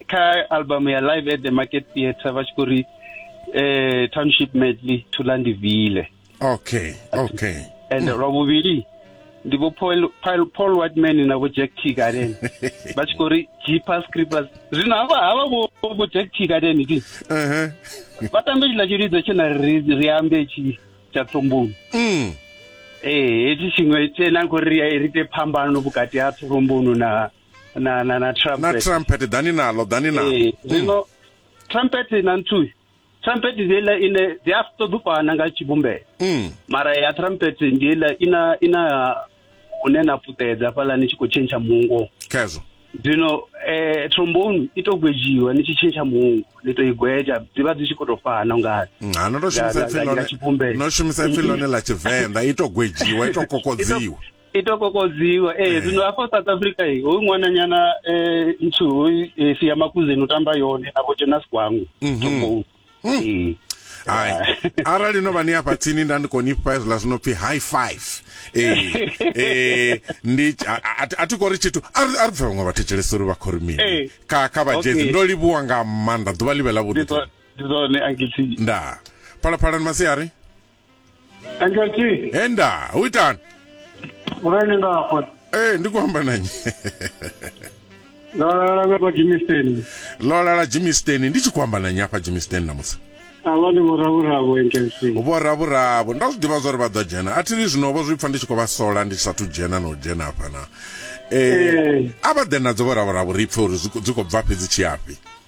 kha album ya live at the market theatre vha tshi khou ri eh township medley thula ndi vile okay okay and lwa vhuvhili ndi vho paul paul paul whiteman na vho jack t garden vha tshi khou ri jeepers creepers zwino havha havha vho vho jack t garden ndi ehe vha tambe tshila tshilidzo tshe na ri ri ambe tshi tsha tsomboni mm ee hetshi tshiṅwe tshe na khou ri ri ite phambano vhukati ha tsomboni na na na na trumpet na trumpet dani nalo dani nalo eh zwino mm. trumpet na nthu trumpet ndi ile ine dzi a ṱoḓa u fana nga tshivhumbeo mm. mara ya trumpet ndi ile ina ina hune na puṱedza fhaḽa ni tshi khou tshentsha mungo khezwo zwino eh trombone i to gwejiwa ni tshi tshentsha mungo ni to i gweja dzi vha dzi tshi khou tou fana ungari mm, ha no to shumisa pfilone no shumisa pfilone ḽa tshivenḓa i to gwejiwa i to kokodziwa i to kokodziwa ee zwino hafha south africa i hoyu ṅwananyana um nthu hoyu eh, sia makuzeni u tamba yone na vho jonas gwangu Tombou. Ee. hai arali no vha ni afha tsini nda ndi khou ni fha hezwiḽa zwi no pfi high five ee ee ndi a- a- a- a thi khou ri tshithu a ri a ri pfe vhaṅwe vhathetshelesi uri vha khou ri mini Ee. kha kha vhajezi Okay. ndo livhuwa nga maanḓa ḓuvha ḽi vhe ḽa Ndi vhuḓi zwo- ndi zwone ankiti ndaa phalaphalani masiari Angelty, henda u itani urani nga hafho. ee ndi khou amba na nnyi Ndo lala nga kwa Jimisteni. lolala jimisten ndi tshi khou amba na nnyi afha jimisten namusi Avha ndi vhoravhuravo Angelty. vhoravhuravo nda zwi ḓivha zwa uri vha ḓo dzhena a thi ri zwino vho zwi pfa ndi tshi khou vha sola ndi sathu dzhena na u dzhena hafha na Eh. a vha ḓe nadzo vhoravhuravo ri pfe uri zwi khou- dzi khou bva fhedzi tshiyafhi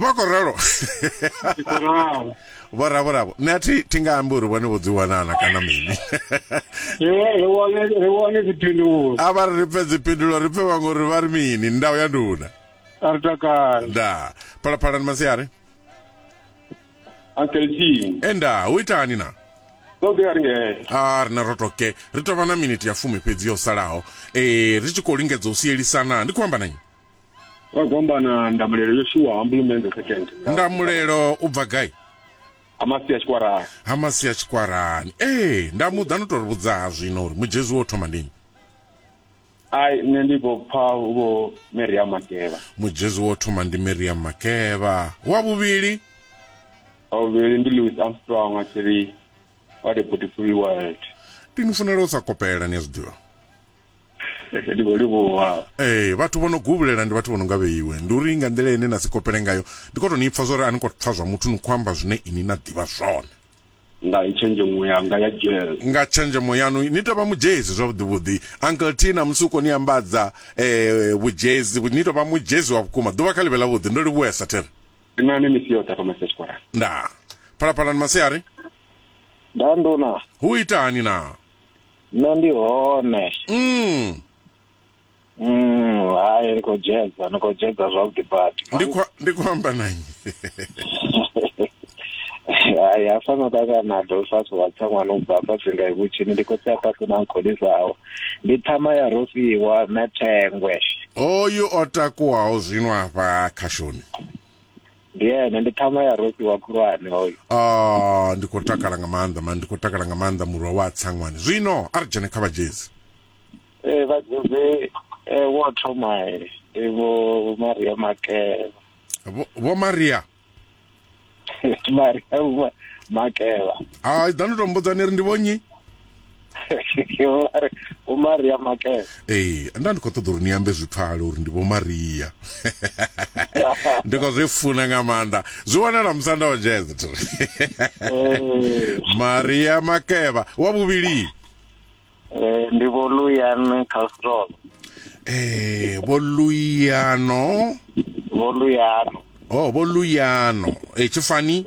vha khou ralo vho ravo ravo nṋe athi thi nga ambi uri vhone vho dzi wanana kana mini ri wane dziphindulo a vha ri ri pfe dziphindulo ri pfe vhaṅwe uri vha ri mini ndau ya nduna a ri takala nda phalaphalani masiari ankeltini e nda hu itani na ṱoḓea ri ngee a rina ro toke ri tovha na miniti ya fumi fhedzi yo salaho um ri tshi khou lingedza u sielisana ndi khou amba na nnyi Kwa gombana ndamulelo yo shuwa hambulu mende second. Ndamulelo u bva gai? Ha masia tshikwarani. Ha masia tshikwarani. Ee, nda muḓa no tori vhudza ha zwino uri Mujezi wo thoma ndinyi? Ai nṋe ndi vho pfa vho Miriam Makeba. Mujezi wo thoma ndi Miriam Makeba. Wa vhuvhili? Wa vhuvhili ndi Louis Armstrong a tshi ri what a beautiful world. Ndi ni funela u sa kopela ni a zwi ḓivha. ndi khou livhuwa ee vhathu vho no gubulela ndi vhathu vho no nga vheiwe ndi uri nga nḓila ine na si kopele ngayo ndi khou tou ni pfa zwo ri a ni khou pfa zwa muthu ni khou amba zwine ini na ḓivha zwone nga tshenzhemo yanga ya dzhele nga tshenzhemo yaṋu ni tou vha mudzhezi zwavhuḓivhuḓi uncle t na musi u khou ni ambadza um vhudzhezi ni tou vha mudzhezi wa vhukuma ḓuvha kha ḽi vhe ḽavhuḓi ndo livhuwesa thero ndi nani misi yoṱhe fha masesi tshikwarani ndaa phalaphalani masiari ndaa ndona hu ita hani naa Nṋe ndi hone. Mm. Mm, hai ni khou dzhedza, ni khou dzhedza zwavhuḓi badi. Ndi khou ndi khou amba na nnyi? Hai hafha no ṱangana na Dolphus wa tsaṅwana u bva hafha Singa Ivhutshini ndi khotsi a Patu na Nkhulisaho. Ndi ṱhama ya Rofhiwa na Thengwe. Oyu o takuwaho zwino afha khashoni. ndi ene ndi ṱhama ya rosi wa khulwane hoyo ah ndi khou takala nga maanḓa mani ndi khou takala nga maanḓa murwa wa tsangwani zwino a ri dzhene kha vhadzhezi ee vhadzhezi eh, wo thoma eh, ndi vho maria makela Vho- vho maria maria Vho makela ai ḓa ndi to mbudzani ri ndi vhonyi vho maria makela ee nda ndi khou ṱoḓa uri ni ambe zwi pfale uri ndi vho maria ndi khou zwi funa nga maanḓa zwi wanala musanda wa jezet maria makeva wa vhuvhili eh, ndi vho luyan castrol ee eh, vho luyano vho luyano o oh, vho luyano e tshifani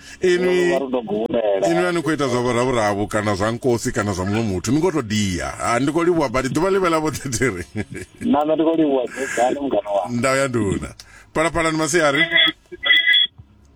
inwi inwi a ni khou ita zwa vhuravhuravu kana zwa nkosi kana zwa muṅwe muthu ni ngo to dia ha ndi khou livhuwa badi ḓuvha ḽivhe ḽa vhoṱhetiri name ndi khou livhuwa dzedzani mungana wa ndau ya nduna phalaphalani masiari